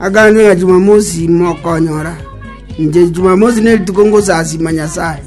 Agakana ng'a Jumamosi mokonyora. Inche Jumamosi ne rituko ngosasima Nyasae.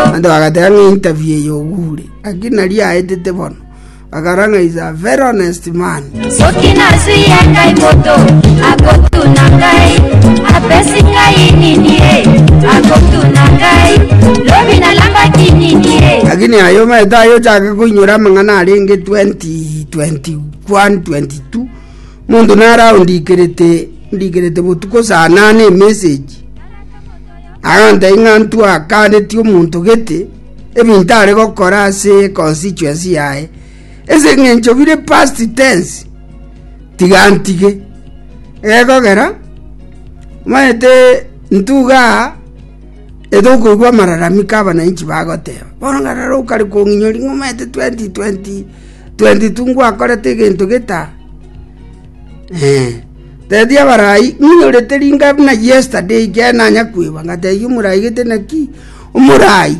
Abanto bagateba ng'a interview eye ogure. Aki nari aetete bono. Bakara ng'a is a very honest man. Lakini aye omanyete aye ochake koinyora amang'ana arenge 2020 22:22, Monto nare aondikerete ndikerete botuko saa nane emessage, agantebia ng'a ntwa kaaneti omonto gete, ebinto are gokora ase constituency yaye. Ase eng'encho bire past tense, tiga ntige. Egekogera, omanyete ntuga aa, etokoigwa amararamiko abananchi bagoteba. Bono ng'a rora okare kong'inyoria ng'a omanyete 2020. 22 ngwakorete egento geta? Teebia abarai, Ng'inyorete ringa buna yesterday ekiagera nanya kwegwa. Ngateebia omorai, Gete naki? Omorai,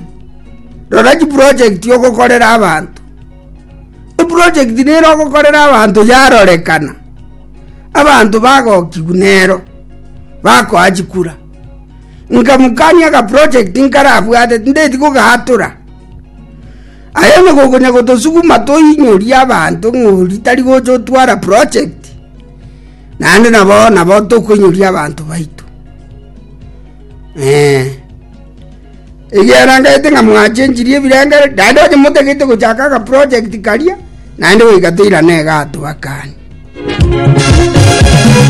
Rora chiprojekti ogokorera abanto. Eprojekti nere ogokorera abanto yarorekana, abanto bagokigwa nero, bakoa chikura. Nkamokania agaprojekti nkarabwate, tindeti kogatura. Aye onye gokonya gotosuguma toinyorie abanto ng'ori tari gocha otwara project, naende nabo nabo tokoinyoria abanto baito. Ee, ekiagera nkaete ng'a mwachenchirie ebirengererio, naende onye motagete gochaka agaproject karia, naende goika toirane iga atwakanie.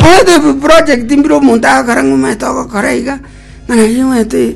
Omanyete ebiproject mbire omonto agakora ng'a omanyete ogokora iga, ng'a nari omanyete